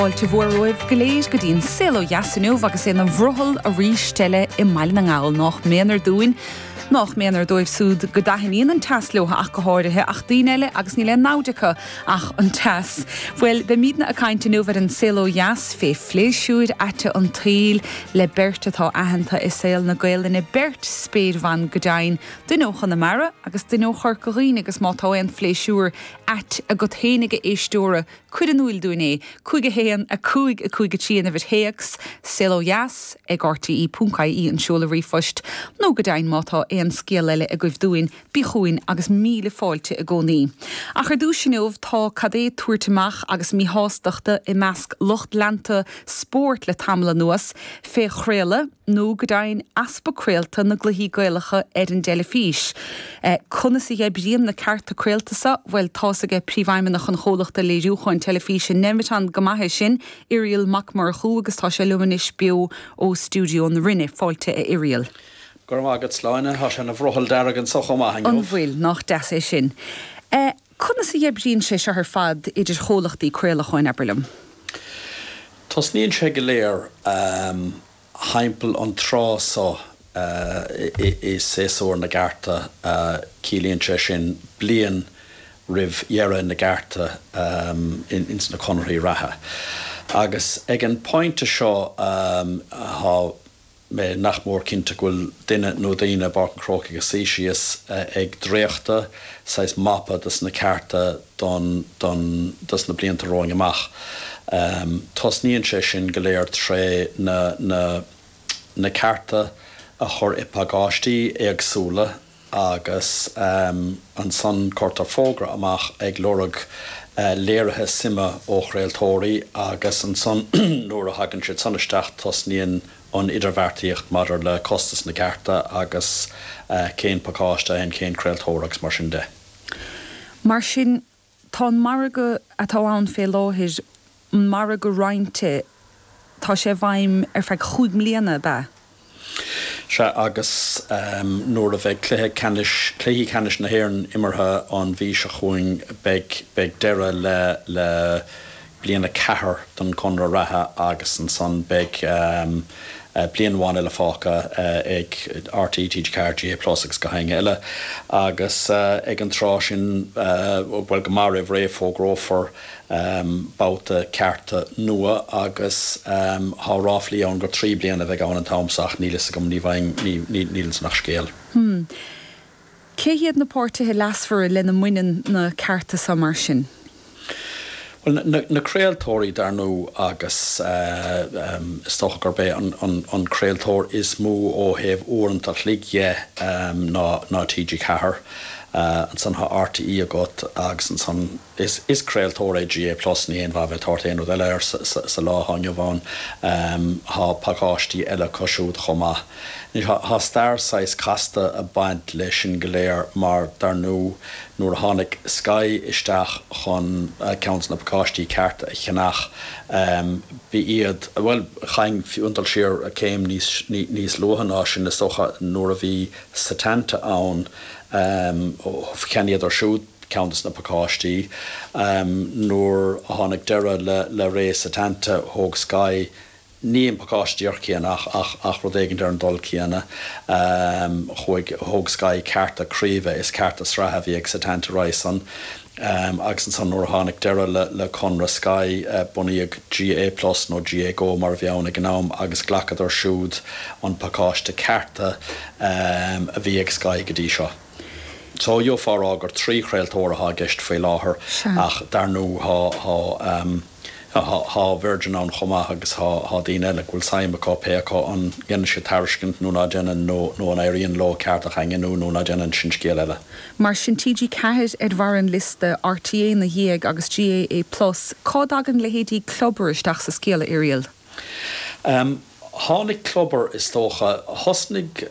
Fáilte mhór romhaibh go léir go dtí an Saol Ó Dheas inniu agus é ina bhrothall arís eile i mBaile na nGall. Nách méanar dúinn, nách méanar dóibh súd go dtaithníonn an teas leotha ach go háirithe, ach daoine eile agus níl aon namhaid acu ach an teas. Bhuel, beimídne a' caint inniu ar an Saol Ó Dheas fé phléisiúir aite an tsaoil le beirt atá aitheanta i saol na Gaolainne, beirt spéirbhan go deimhin, duine ó Chonamara agus duine ó Chorca Dhuibhne agus má tá aon phléisiúr ait agat fhéinig a éisteoir, Cuir in úil dúinn é. 5 1 5 5 3 an uimhir téacs, Saol Ó Dheas, ag rte, punc, ie an seoladh ríomhphoist, nó go deimhin má tá aon scéal eile agaibh dúinn, bí chugainn agus míle fáilte i gcónaí. Ach ar dtús inniu tá an-chuid tabhairt amach agus míshástacht i measc lucht leanta spóirt le tamall anuas fé chraoladh, nó go deimhin easpa craolta na gcluichí Gaelacha ar an dteilifís. Conas a oibríonn na cearta craolta so? Bhuel, tá a fhios aige Príomhfheidhmeannach an Chomhlachta Léiriúcháin Teilifíse Nemeton go maith é sin, Irial Mac Murchú, agus tá sé liom anois beo ó Stiúideo na Rinne. Fáilte a Irial. Go raibh maith agat, Sláine. Tá sé ina bhrothall dearg anso chomh maith inniu. An bhfuil? Nách deas é sin. Conas a oibríonn sé seo ar fad idir chomhlachtaí craolacháin, abair liom? Tosnaíonn sé go léir thimpeall an tráth so i séasúr na gcearta, ciallaíonn sé sin bliain roimh dheireadh na gcearta ins na conarthaí reatha. Agus ag an bpointe seo tá. mé nach mór cinnte go bhfuil duine nó daoine i bPáirc an Chrócaigh ag suí síos ag dréachtadh saghas mapa dos na cearta don don dos na blianta romhainn amach. Tosnaíonn sé sin go léir tré na na na cearta a chur i bpacáistí éagsúla, agus ansan cuirtear fógra amach ag lorg léirithe suime ó chraoltóirí agus ansan nuair a thagann siad san isteach tosnaíonn an idirbheartaíocht maidir le costas na gcearta agus cén pacáiste a théann cén craoltóir agus mar sin de. Mar sin Tá an margadh atá ann fé láthair, an margadh roinnte, tá sé i bhfeidhm ar feadh chúig mbliana, ab ea? Sea, agus nuair a bheidh cluiche ceannais, cluichí ceannais na hÉireann imeartha an mhí seo chugainn beidh, beidh deireadh le, le, bliain a ceathair don gconradh reatha agus ansan beidh bliain amháin eile fágtha ag RTÉ, TG4, GAA Plus agus gach éinne eile agus ag an tráth sin bhuel go maith roimh ré fógrófar babhta cearta nua agus tá ráflaí ann gur trí bliana a bheidh ann an t-am so ach níl a fhios agam, ní fheadar, níl ansan ach scéal. Hmm. Cé hiad na páirtithe leasmhara lena mbaineann na cearta seo mar sin? Bhuel, na craoltóirí dar ndóigh agus is dócha gurb é an craoltóir is mó ó thaobh uaireanta chloig de ná TG4. Ansan tá RTÉ agat agus ansan. Is craoltóir é GAA Plus, níl aon mhaith a bheith ag tabhairt aon rud eile air sa lá atá inniu ann. Tá pacáistí eile acu siúd chomh maith. Tá stair saghas casta ag baint le sin go léir mar dar ndú nuair a tháinig Sky isteach chun ceann de na pacáistí cearta a cheannach b'iad, bhuel chaithfinn iontáil siar céim níos luaithe ná sin is dócha nuair a bhí Setanta ann, cheannaíodar siúd. ceann de na pacáistí. Nuair a tháinig deireadh le ré Setanta thóg Sky ní an pacáiste díreach céanna ach rud éigint ar an ndul céanna. Chuaigh, thóg Sky cearta craoibhe is cearta sraithe a bhí ag Setanta roimis sin. Agus ansan nuair a tháinig deireadh le conradh Sky bunaíodh GAA Plus nó GAA Go mar a bhí ann ag an am agus ghlacadar siúd an pacáiste cearta a bhí ag Sky go dtí seo. So d'fhéadfá a rá gur trí chraoltóir athá i gceist faoi láthair ach dar ndú thá Virgin ann chomh maith agus thá daoine eile go bhfuil suim acu, pé acu an ndéanann siad tairiscint nó ná déanann nó an éiríonn leo cearta a dhaingniú nó ná déanann, sin scéal eile. Mar sin TG4 ar bharr an liosta, RTÉ 'na dhiaidh agus GAA Plus. Cá dtagann leithéidí Clubber isteach sa scéal, a Irial? Tháinig Clubber is dócha. Thosnaigh.